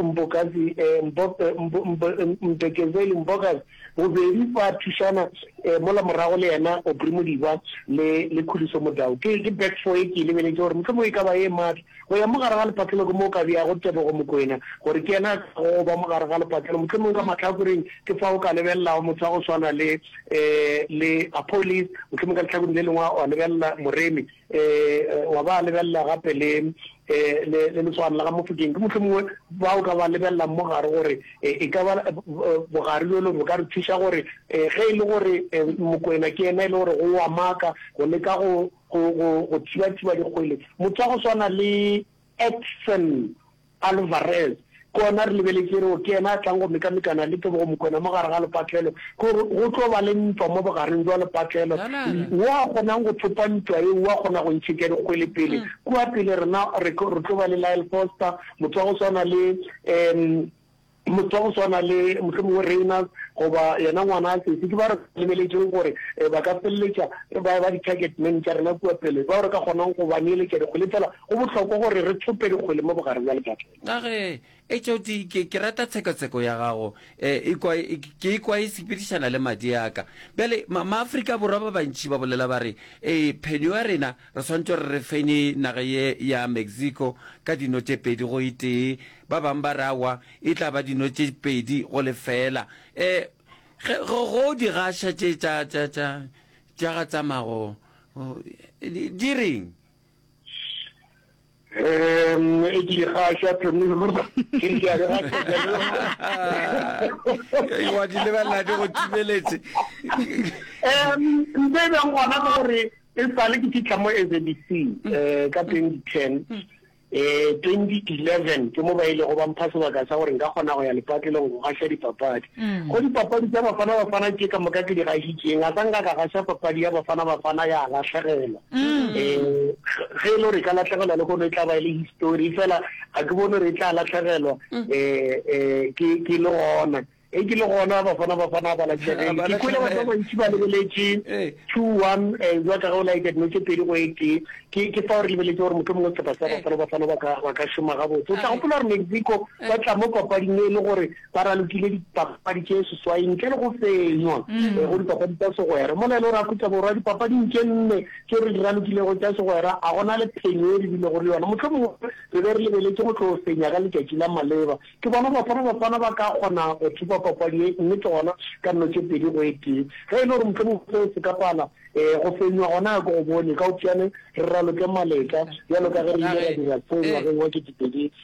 Mbokazi, eh, Mbo, eh, Mbo, Mbo, eh, Mbekezeli, Mbokazi, bobedi ba thušana, eh, mola morago le yena Aubrey Modiba le, le Khuliso Modau. Ke, ke back four e ke e lebeletše gore mohlomongwe e ka ba ye matla. Go ya mo gare ga lepatlelo ke mo o ka beago Tebogo Mokoena gore ke yena a tlago go ba mo gare ga lepatlelo. Mohlomongwe ka mahlakoreng ke fa o ka lebelelago motho wa go swana le, eh, le Appolise, mohlomongwe ka lehlakoreng le lengwe wa lebelela Moremi. wa ba lebelela gape le le leswana la ga Mofokeng, ke mohlomongwe ba o ka ba lebelelang mo gare gore e ka ba bogare bjolo bo ka re thuša gore ge e le gore Mokwena ke yena e le gore go wa maka go leka go go go go thiba-thiba dikgwele, motho wa go swana le Edson Alvarez, Ke gona re lebeletše e re o ke yena a tlang go mekamekana le Tebogo Mokoena mo gare ga lepatlelo. Ke gore go tlo ba le ntwa mo bogareng bja lepatlelo. Wo a kgonang go thopa ntwa yeo o a kgona go ntšhetša dikgwele pele. Kua pele rena re tlo ba le Lyle Foster, motho wa go swana le Motho wa go swana le mohlomongwe Reynolds goba yena ngwana a Sesi ke bao re sa lebeletšego gore ba ka feleletša ba eba di-target man tša rena kua pele, bao re ka kgonang go ba neeletša dikgwele. Efela go bohlokwa gore re thope dikgwele mo bogare bja lepatlelo. Ka ge HOT, ke, ke rata tshekatsheko ya gago. E, e kwa, e, ke e kwa e sepedišana le madi a ka. Bjale, ma, Maafrika Borwa ba bantši ba bolela ba re, Ee, phenyo ya rena Re swanetše re re fenye naga ye ya Mexico ka dino tše pedi go itee. Ba bang ba re awa, e tla ba dino tše pedi go lefeela. E, ge, ge go di gaša tše tša, tša, tša, tša ga tsamago, di reng? Um, e ke ikgaša Thomilo. Ke ke a re ga Ee, wa di lebelela di go timeletse. Um, ntho e beng gona ke gore e sale ke fitlha mo SABC eh, ka 2010 eh 2011 ke mo ba ile go ba mpha sebaka sa gore nka kgona go ya lepatlelong go gaša dipapadi go dipapadi tsa bafana bafana ke ka moka ke di gašitseng a sa nka ka gaša papadi ya bafana bafana ya lahlegelwa Mm. Eh, ge e le gore e ka latlhegelwa le gone e tla ba e le histori fela ga ke bone gore e tla latlhegelwa um mm. eh, eh, ke le gona e ke le gona bafana bafana ba latlhegeng ke kwele batho ba bantsi ba lebeletse two one jwa ka go laekete no ke pedi go ete ke ke fa gore lebeletse gore motlho mongwe sepa sa bafana bafana ba ka shoma gabotse o tla gopola gore mexico ba tla mo papading e le gore Ba ralokile dipapadi tše seswai ntle le go fenywa eh, go dipapadi tša segwera. Mola e le gore Afrika Borwa dipapading tše nne tšeo re di ralokilego tša segwera a gona le phenyo e re bilego le yona. Mohlho mongwe re be re lebeletše go tlo fenya ka letšatši la maleba. Ke bona Bafana Bafana ba ka kgona go thupa papadi ye mme ke gona ka nno tše pedi go e tee. Ge e le gore mohlho mongwe seo se ka pala eh, go fenywa gona ya ke go bone ka opšane re raloke maletla bjalo ka ge re ile ra dira seo ngwageng wa ketepedi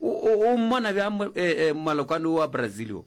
O mmona bjang malokwane wo wa Brazil wo?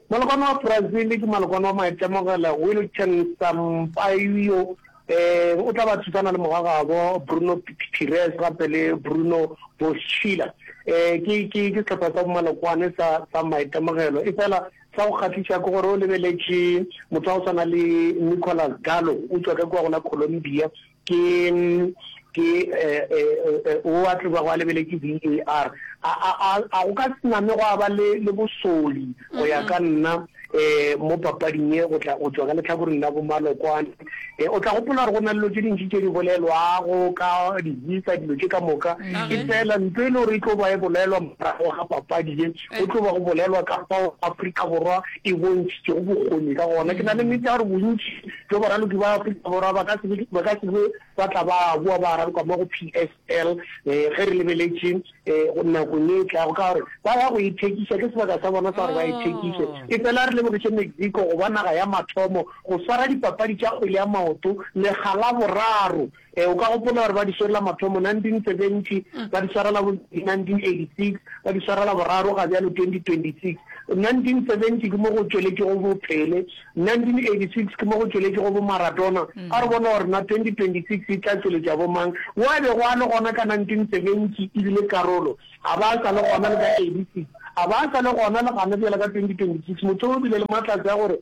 Malokwane wa Brazil ke malokwane wa maitemogelo, Wilton Sampaio. Um o tla ba thusana le mogagabo Bruno Pires gape le Bruno Boschiller. Um ke ke ke sehlopha sa bomalokwane sa sa maitemogelo. E fela sa go kgahliša ke gore o lebeletše motho wa go tshwana le Nicolas Gallo o tšwa ka kua go la Colombia, Ke, ke, e, e, e, o a tloba go a lebeletše VAR. A, a, a, a go ka se name gwa ba le, le bosoli, go ya ka nna, e, mo papading ye, go tla, go tšwa ka lehlakoreng la bomalokwane. E, o tla gopola gore go na le dilo tše dintši tše di bolelwago ka di-visa, dilo tše ka moka. Efela ntho e le gore e tlo ba e bolelwa morago ga papadi ye, go tlo ba go bolelwa ka fao Afrika Borwa e bontšhitšego bokgoni ka gona. Ke na le nnete ya gore bontši, Bjo baraloki ba Afrika Borwa ba ka se be ba ka se be ba tla ba boa ba raloka mo go PSL ge re lebeletše nakong e tlago ka gore ba ya go ithekiša, ke sebaka sa bona sa gore ba ithekiše. Efela re lebogiše Mexico go ba naga ya mathomo go swara dipapadi tša kgwele ya maoto lekga la boraro Ee, o ka gopola gore ba di swerela mathomo 1970, ba di swarela bobedi 1986, ba di swarela boraro ga bjalo 2026. 1970 ke mo go tšweletšego bo Pele, 1986 ke mo go tšweletšego bo Maradona. A re bone gore na 2026 e tla tšweletša bo mang. Wo a bego a le gona ka 1970 e bile karolo, a ba a sa le gona le ka 86, a ba a sa le gona le gona bjale ka 2026. Motho o bile le matlatsi a gore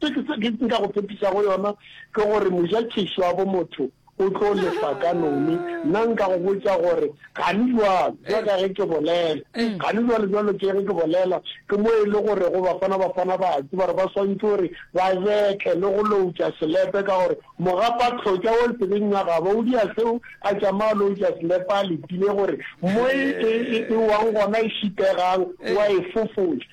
Se ke se ke nka go tshepišago yona ke gore moja tšešo ya bomotho o tlo lefa ka none. Nna nka go botša gore, Gane bjalo, bjalo ka ge ke bolela, gane bjalo, bjalo ke ge ke bolela, ke mo e le gorego Bafana Bafana ba a tseba gore ba swantšwe gore ba betle le go loutša selepe ka gore mogapatlhotša o tsebeng ya gabo o dia seo a tšama a loutša selepe a letile gore mo e e wang gona e šipegang o a e fofoša.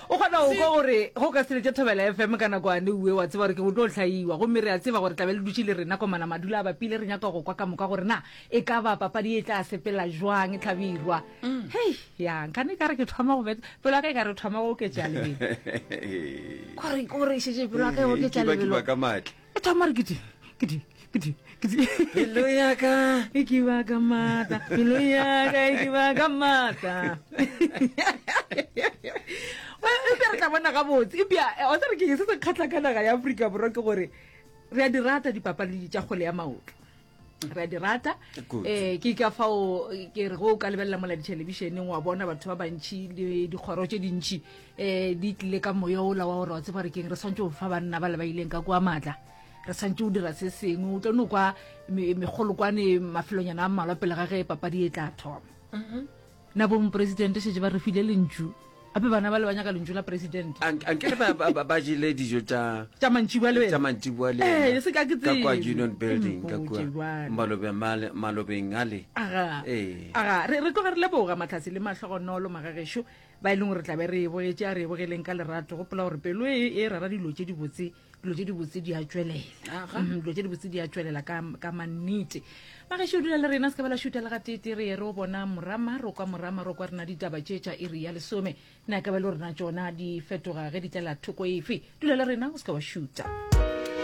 O kgona go kwa gore ge o ka se lete Thobela FM ka nakoane, uwe wa tseba gore ke go tlo hlaiwa. Gomme re a tseba gore tlabe le dutše le rena kwa mona. Madula a bapile, re nyaka go kwa ka moka gore na e ka ba papadi e tla sepela jwang Hlabirwa. Hei, ya, nkane e ka re ke thoma go bet, pelo ya ka e ka re thoma go oketša lebelo. Ko re, ko re e šetše pelo ya ka e oketša lebelo. e thoma re ke di ke di ke di ke di pelo ya ka e ke ba ka mata pelo ya ka e ke ba ka mata Well, eupša re tla bona gabotse eupša eh, wa tsere ke se se kgatlha ka naga ya aforika borwa ke gore re a di rata dipapadi tša kgole ya maoto re a di rata um ke ka fao ke re go o ka lebelela mola dithelebišeneng wa bona batho ba bantšhi le dikgoro tse dintšhi um di tlile ka moya ola wa gore wa tseba gore keng re tshwanetse go fa banna ba le ba ileng ka kwa maatla re tshwanetse o dira se sengwe o tlo no kwa megolokwane mafelonyana a mmalwa pele ga ge papadi e tla thoma mm-hmm. Na bo mopresidente šetše ba re file lentšu? Gape bana bale ba nyaka lentšu la presidente. Ank- ankere ba- ba- ba- ba jele dijo tša Tša mantšiboa le wena. tša mantšiboa le Eh, yena se ka ke ka kwa tsebe. union building ka Mpotše kua bjale. malobeng male- malobeng ale aga Ee. aga re re tloga re leboga matlhase le mahlogonolo magagešo ba e leng gore re tlabe re e bogetše a re e bogeleng ka lerato gopola gore pelo e e rara dilo tše dibotse dilo tse dibotse di a tšwelela mhm, dilo tse dibotse di a tšwelela ka mannete magaše o dula le rena se ka bela šuta le ga tete re ye re o bona morama ro kwa morama ro kwa rena ditaba tše tša iri ya lesome ne a ka ba le rena tšona di fetoga ge di tlela thoko efe dula le rena o se ka wa šuta